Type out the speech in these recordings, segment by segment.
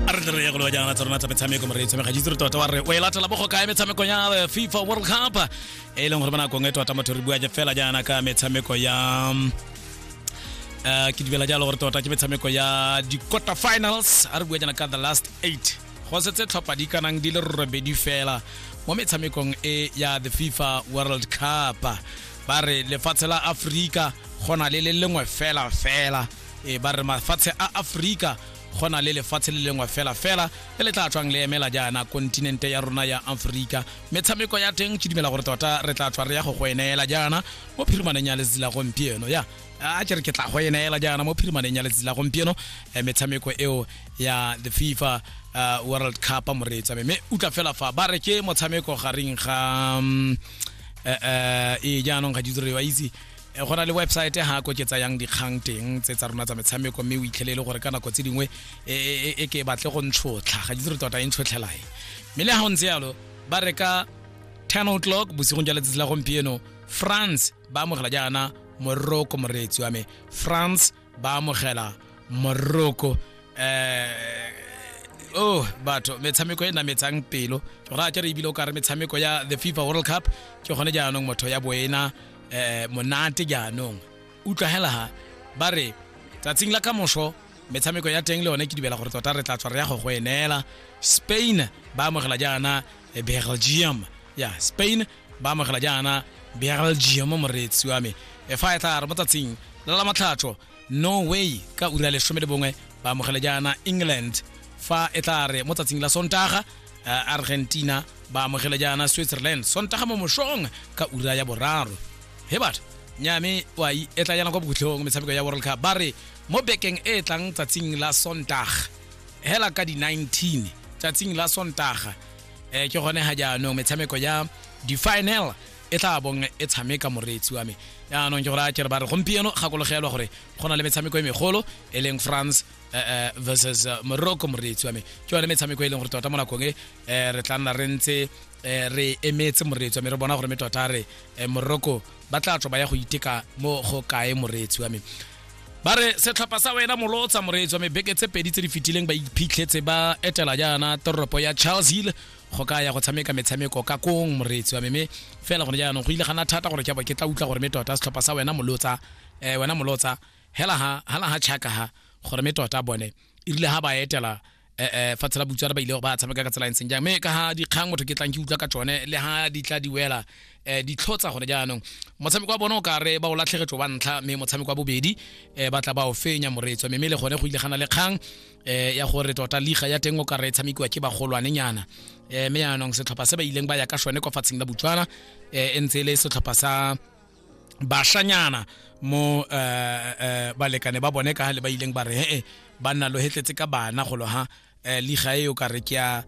a re tle re ye go lewa jaana tsa rona tsa metshameko mo re e tshameka jitse re tota wa re o e latela mo go kae metshameko ya the fifa world cup e e leng gore ba nakong e tota motho re bua je fela jaana ka metshameko ya eh, ke dibela jalo gore tota ke metshameko ya di-quarter finals a re bua jaana ka the last eight go setse tlhopha di kanang di le robedi fela mo metshamekong e ya the fifa world cup ba re lefatshe la aforika go na le le lengwe fela fela e ba re mafatshe a aforika go na le lefatshe le lengwe fela fela le le tla tswang le emela jaana kontinente ya rona ya aforika metshameko ya teng ke dumela gore tota re tla tswa re ya go go eneela jaana mo phirimaneng ya letsatsi la gompieno ya a ke re ke tla go eneela jaana mo phirimaneng ya letsatsi la gompieno eh, metshameko eo ya the fifa uh, world cup moreetsa mme utla fela fa ba re ke motshameko gareng ga um, uh, uh, e jaanong ga di diriwa itse Eh, go na le website ha ko ke tsayang dikgang teng tse tsa rona tsa metshameko mme o itlhelele gore ka nako tse dingwe e, e, e, e ke batle go ntshotlha ga itse re tota e ntshotlhelae mme le ga o ntse yalo ba reka 10 o'clock bosigong ja letsatsi la gompieno france ba amogela jaana moroko moreetsi wa me france ba amogela moroko um oh batho metshameko e nametsang pelo ra ke re ebile o ka re metshameko ya the fifa world cup ke gone jaanong motho ya boena um monate jaanong utlwagela ha ba re tsatsing la ka moso metshameko ya teng le yone ke dibela gore tota re tla tswa re ya go go enela spain ba amogela jaana eh, belgium ya spain ba amogela jaana beral gmo moreetsi wa me efa e tla re mo tsatsing la la matlhatsho norway ka ura lesome le bongwe ba amogela jaana england fa e tla re mo tsatsing la sontaga eh, argentina ba amogela jaana switzerland sontaga mo mosong ka ura ya boraro he batho nyame wa e tla yana kwa bokhutlhong metshameko ya world cup ba re mo bekeng e e tlang tsatsing la sontaga hela ka di-19 tsatsing la sontaga um ke gone ga jaanong metshameko ya di-final e tla bong e tshameka moreetsi wa me jaanong ke gore a kere ba re gompieno gakologelwa gore go na le metshameko e megolo e leng france eh, eh, versus eh, morocco moreetsi wa me ke yone metshameko e leng gore tota mo nakong e re tla nna re ntse re emetse moreetsi wa me re bona gore me tota re morocco ba tla tswa ba ya go iteka mo go kae moreetsi wa me ba re setlhopha sa wena molo o tsamoreetswa mebeke tse pedi tse di fetileng ba iphitlhetse ba etela jaana toropo ya charles hill go ka ya go tshameka metshameko ka kong moreetsi wa meme fela gone jaanong go ile gana thata gore ke bo ke tla utlwa gore me tota setlhopha sa wena molotsa eh wena molotsa hela ha hala ha chaka ha gore me tota bone e rile ha ba etela eh, eh, fatshe la butswana ba ile ba tshameka ka tsela e ntseng jang mme ka ha dikgang motho ke tlang ke utlwa ka tsone le ha di tla di wela eh, di tlhotsa gone jaanong motshameko wa bone o kare ba o latlhegetso wa ntlha mme motshameko wa bobedi eh, ba tla ba o fenya moreetso mme le gone go ile gana le kgang eh, ya gore tota liga ya teng o kare e tshamekiwa ke bagolwanenyana eh, mme yaanong setlhopha se ba ileng ba ya ka sone kwa fatsheng la butswana eh, e ntse e le setlhopha sa bashanyana mo uh, uh, balekane ba bone ka le ba ileng ba re he ba nna lo hetletse ka bana go lo ha uh, liga e yo ka re ke ya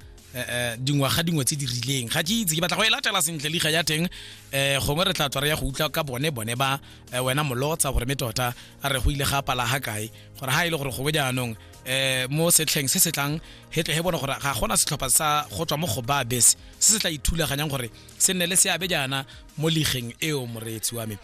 dingwaga dingwe tse di rileng ga ke itse ke batla go e latela sentle liga ya teng um gongwe re tla tswa re ya go utlwa ka bone bone ba wena molotsa gore me tota a re go ile ga pala ga kae gore ga e le gore gongwe jaanong um mo setlheng se se tlang he tle he bone gore ga gona setlhopha sa go tswa mo go ba bese se se tla ithulaganyang gore se nne le seabe jaana mo ligeng eo moreetsi wa me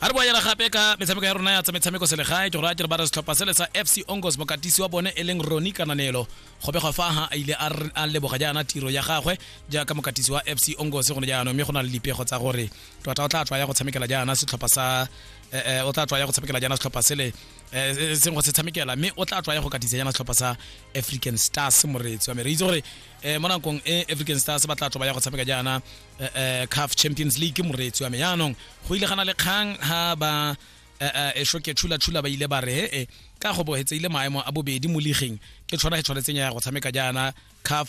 a re boela gape ka metshameko ya rona ya tsa metshameko selegae ke gore a tere ba re setlhopha sele sa fc ongos mokatisi wa bone e leng roni kananelo go begwa fa ha a ile a leboga jaana tiro ya gagwe jaaka mokatisi wa fc ongos gone jaanong mme go na le dipego tsa gore tota o tla tswa ya go tshamekela jaana setlhopha sa eh, eh, o tla tswa ya go tshamekela jaana setlhopha sele eh, seng go se tshamekela mme o tla tswa ya go katisa jaana setlhopha sa african stars moreetsi wa me re itse gore eh mo nakong e African Stars ba tla tloba ya go tshameka jaana eh, eh, CAF Champions League moreetsi wa me yaanong go ile gana le kgang ha ba eh, eh, e shoke chula chula ba ile ba re he ka go bohetseile maemo a bobedi mo ligeng ke tshwana e tshwanetseng ya go tshameka jaana CAF